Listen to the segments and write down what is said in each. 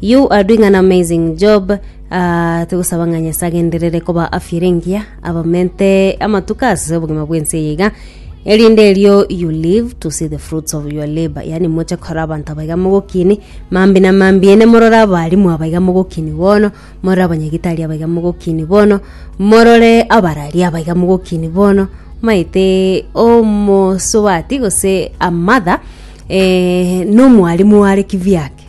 You are doing an amazing job uh, togosaba ng'a nyasaye agenderere koba afya ere engiya abamente amatuko ase obogima bwense eye iga erinde erio you live to see the fruits of your labor yaani moche kora abanto abaiga mogokini mambi na mambi ene morore abarimu abaiga mogokini bono morore abanyagitari abaiga mogokini bono morore abarari abaiga mogokini bono maete omosubati gose a mother eh, nomwarimu are kivyake ake.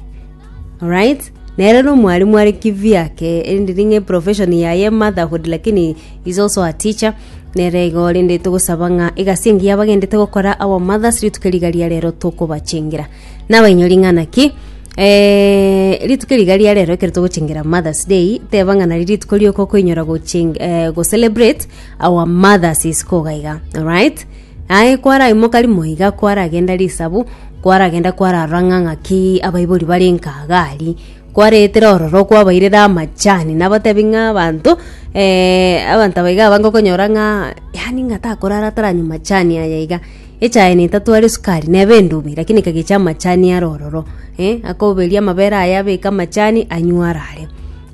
Alright, nere na omwalimu are kivyake erinde niga eprofession yaye motherhood lakini is also a teacher nere igo rende togosaba ng'a egasi engiya bagendete gokora our mothers rituko riga ria rero tokobachengera nabainyori ng'a naki eh, rituko riga ria rero ekero togochengera mothers day teba ng'a nari rituko rioka okoinyora gocheng eh, gocelebrate our mothers isiko iga iga alright Aye kwaraimoka rimo iga kwaragenda risabu, kwaragenda kwararora ng'a ng'aki abaibori bare Nkagari. Kwareetera ororo kwabairera amachani, nabatebi ng'a abanto eh, abanto aba iga abange okonyora ng'a yaani ng'a takorara ataranywa machani aya iga, echae netatwara esukari neba endubi lakini ekagecha amachani are ororo eh, akoberia amabere aye abeke amachani anywe arare.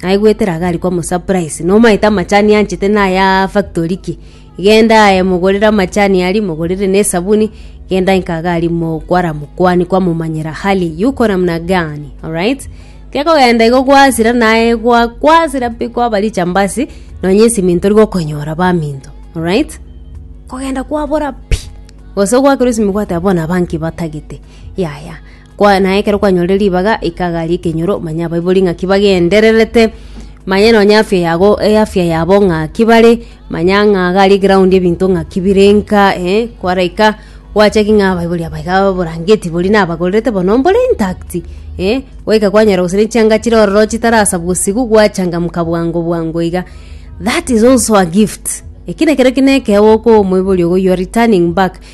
Aye goetera iga ari komosurprise, nomaete amachani anchete naya factory ki. Genda aye mogorere amachani aria, mogorere na esabuni, genda inka iga aria mokwara mokwani kwamomanyera hali yuko namna gani, alright? Gekogenda igo gwasira naye gwa kwasira pi kwaba richambasi, nonye esimiti tori gokonyora baminto, alright? Kogenda kwabora pi, gose ogwakerwa esimi gwateba bono aba nki batagete, yaya. Kwa, na ekero kwanyorire ribaga, ika gari ekenyoro, manya abaibori ng'aki bagendererete, manya nonye afya yago eafya yabo ng'aki bare, manya ng'a gari eground ebinto ng'aki bire nka eh, kwaraika gwachaki ng'a abaibori aba iga oborangeti boria nabagorerete bono mbore intact, eh, gwaika kwanyora gose nechianga chire ororo chitarasa bosigwa gwachangamka bwango bwango iga, that is also a gift, ekio nekero kine ekeo okoa omoibori ogo you are returning back.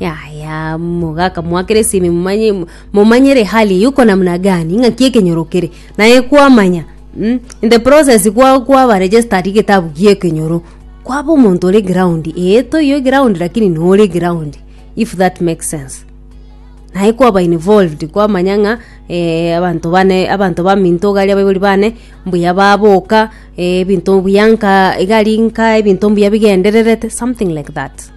Yaya, moga akamoakera esimi momanye momanyere hali yuko namna gani ng'aki ekenyoro kere naye kwamanya mm? in the process kwa kwaba registered getabu gia ekenyoro kwaba omonto ore ground ee toiyo eground lakini nore ground if that makes sense naye kwaba involved kwamanya ng'a eeh abanto bane abanto baminto iga aria baibori bane mbuya baboka ebinto buya nkaa iga rinka ebinto mbuya bigendererete something like that.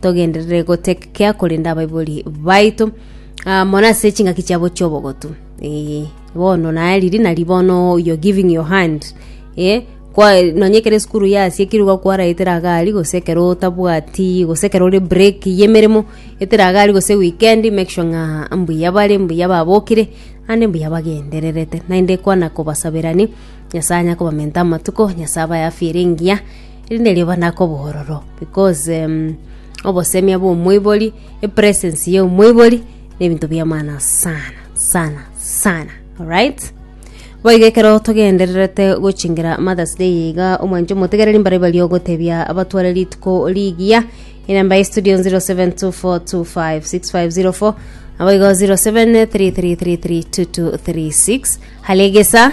togenderere gotegekea korenda abaibori baito ah, mono ase chingaki chiabo chiobogotu Eh, bono naye riri nari bono you're giving your hand eh, kwa nonye ekero esukuru yasia ekero iga kwaraetera agari gose ekero otabwati gose ekero ore break y'emeremo etera agari gose weekend make sure ng'a mbuya bare mbuya babokire ande mbuya bagendererete naende kwana kobasabera ni nyasaye anyakobamenta amatuko nyasaye abae afya ere engiya Erinde riabana ake obororo because obosemia bwa omoibori, epresence ya omoibori na ebinto bia maana sana sana sana alright. Boigo ekero togendererete gochingera Mother's Day eye iga omwancho omotegereri mbare baria ogotebia abatware rituko rigiya enamba ya estudio 0724256504 naboigo 0733332236 Halegesa.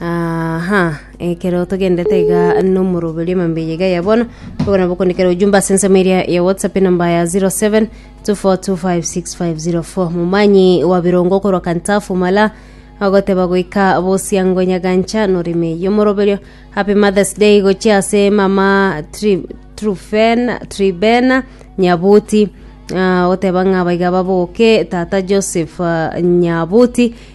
Aha, ekero togendete iga nomoroberio emambia iga ya bono bobe nabo okondikera ujumbe ase ensemo eria ya whatsapp enamba ya 07 24256504 momanyi wa birongo korwa kantafu mala agoteba goika bosiango nyagancha noreme yomoroberio happy mothers day gochia ase mama Tri- trufena tribena nyabuti Ah, oteba ng'a abaiga baboke tata joseph ah, nyabuti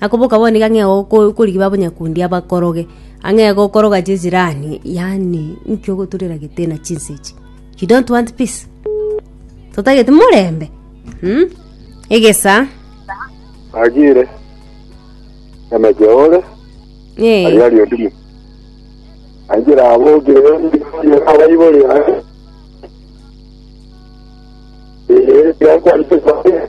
Akoboka bono nigo ang'e goko- korigia babanyakundi abakoroge, ang'e gokoroga chesirani, yaani nki ogoturera gete na chinsa echi? You don't want peace? Totagete morembe? Mh? Egesa, Agire. Emeche ore. eh, Aria ario ndimu. Angira abo gire ndimu aba ibori. Eh, ya kwa ndimu.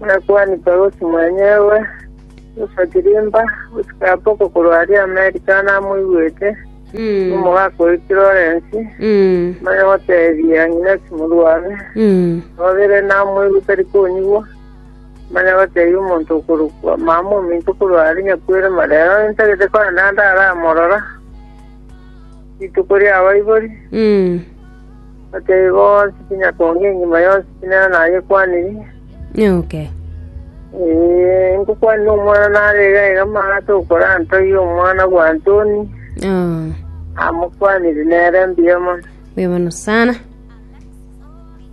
Omwakuani Pausi mwenyewe, Yesu Agrippa, gochika boko korwa aria Amerika namoigwete, nomogaka o Florensi, manya goteebia ng'ina chimorwabe, nababere namoigwe tari konyigwa, manya goteebia omonto okorokwa Mama ominto korwa are nyakwere marero intagete kogenda ndaramorora rituko ri'abaibori. Nakiaigo onsi tinyakonge engima yonsi tinena nayekwaniri. Nyoke. Ee, nkokwanire omwana nare iga iga amagato okora Antoi, omwana bwa Antoni, Oh, amokwanire nere mbuya mono. mbuya mono sana.